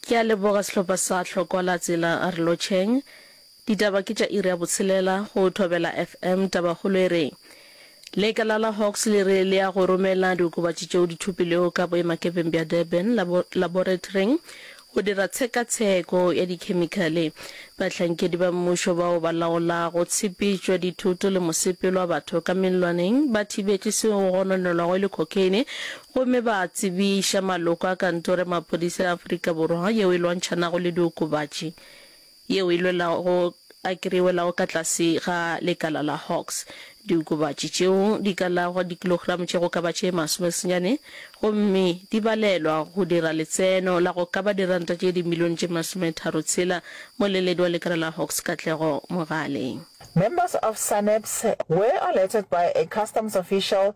Ke a leboga sehlopha sa Hlokwa la Tsela re lotšheng. Ditaba ke tša iri ya botshelela go Thobela FM. Tabakgolo e re, Lekala la Hawks le re le ya go romela diokobatši tšeo di thopilwego ka boemakepeng bja Durban labo laboratoring go dira tshekatsheko ya dikhemikhale Bahlankedi ba mmušo bao ba laolago tshepetšo ya dithoto le mosepelo wa batho ka mellwaneng ba thibetše seo go gononelwago e le cocaine gomme ba tsebiša maloko a Kantoro ya Maphodisa ya Afrika Borwa yeo e Lwantšhanago le Diokobatši yeo e lwelago a kreiwelago ka tlase ga lekala la Hawks Diokobatši tšeo di ka lagwa dikilogramo tše go ka ba tše masome senyane gomme di balelwa go dira letseno la go ka ba diranta tše dimilione tše masometharo tshela, moleledi wa lekala la Hawks Katlego Mogale. Members of SANEPS were alerted by a customs official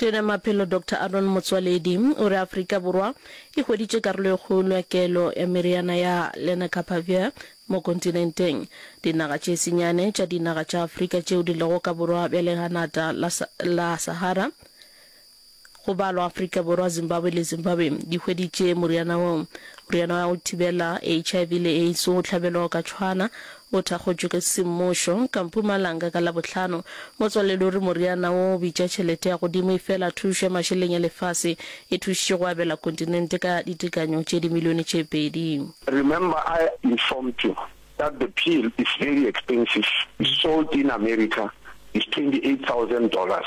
Tona ya Maphelo Doctor Aaron Motsoaledi o re Afrika Borwa e hweditše karolo e kgolo ya kelo ya meriana ya Lenacapavir mo kontinenteng. Dinaga tše senyane tša dinaga tša Afrika tšeo di lego ka borwa bja leganata la Sahara, go balwa Afrika Borwa, Zimbabwe le Zimbabwe, di hweditše moriana wo. Moriana wa go thibela HIV le AIDS o hlabelwa o ka tshwana O thakgotšwe ke semmušo ka Mpumalanga ka Labohlano. Motswaledi o re moriana wo o bitša tšhelete ya godimo efela thušo ya mašeleng ya lefase e thušitše go abela kontinente ka ditekanyo tše dimilione tše pedi. Remember I informed you that the pill is very expensive, sold in America is twenty eight thousand dollars,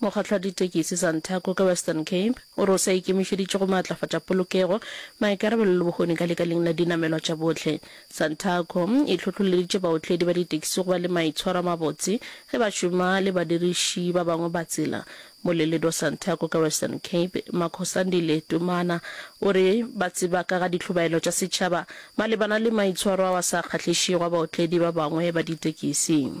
Mokgatlo wa ditekisi Santaco ka Western Cape o re o sa ikemišeditše go maatlafatša polokego, maikarabelo le bohoni ka lekaleng la dinamelwa tša bohle. Santaco e hlohloleditše baotledi ba ditekisi go ba le maitshwaro a mabotse ge ba šoma le badiriši ba bangwe ba tsela. Moleledi wa Santaco ka Western Cape, Makhosandile Tumana o re ba tseba ka ga dihlobaelo tša setšhaba malebana le maitshwaro ao a sa kgahlišego a baotledi ba bangwe ba ditekisi.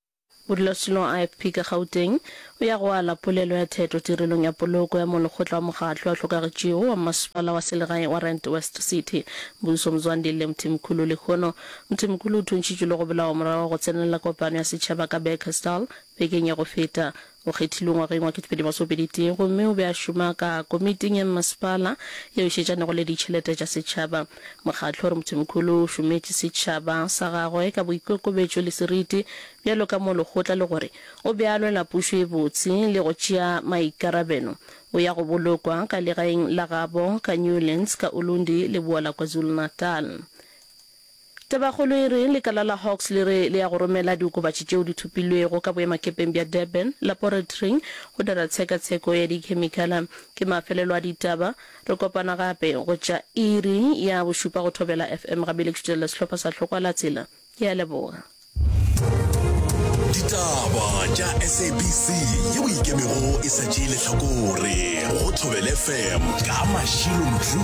Modulasetulo wa IFP ka Gauteng o ya go ala polelo ya theto tirelong ya poloko ya molekgotla wa mokgatlo a hlokagetšego wa mmasepala wa selegae wa Rand West City, Mbuso Mzwandile Mthimkhulu. Lehono, Mthimkhulu o thuntšhitšwe le go bolawa morago ga go tsenelela kopano ya setšhaba ka Bekkersdal bekeng ya go feta. O kgethilwe ngwageng wa 2021 gomme o be a šoma ka Komiting ya Mmasepala yeo e šetšanego le Ditšhelete tša Setšhaba. Mokgatlo o re Mthimkhulu o šometše setšhaba sa gagwe ka boikokobetšo le seriti bjalo ka mo lekgotla le gore o be a lwela pušo e botse le go tšea maikarabelo. O ya go bolokwa ka legaeng la gabo ka Newlands ka Ulundi, leboa la KwaZulu-Natal. Tabakgolo e re, Lekala la Hawks le re le ya go romela diokobatši tšeo di thopilwego ka boemakepeng bja Durban laporatoring go dira tshekatsheko ya dikhemikala. Ke mafelelo a ditaba. Re kopana gape go tša iri ya bošupa go Thobela FM. Gabele ke šutelela sehlopha sa Hlokwa la Tsela. Ke a leboga. Ditaba tša SABC yeo e ikemego e sa tšee lehlakore go Thobela FM ka Mashilo Mthuli.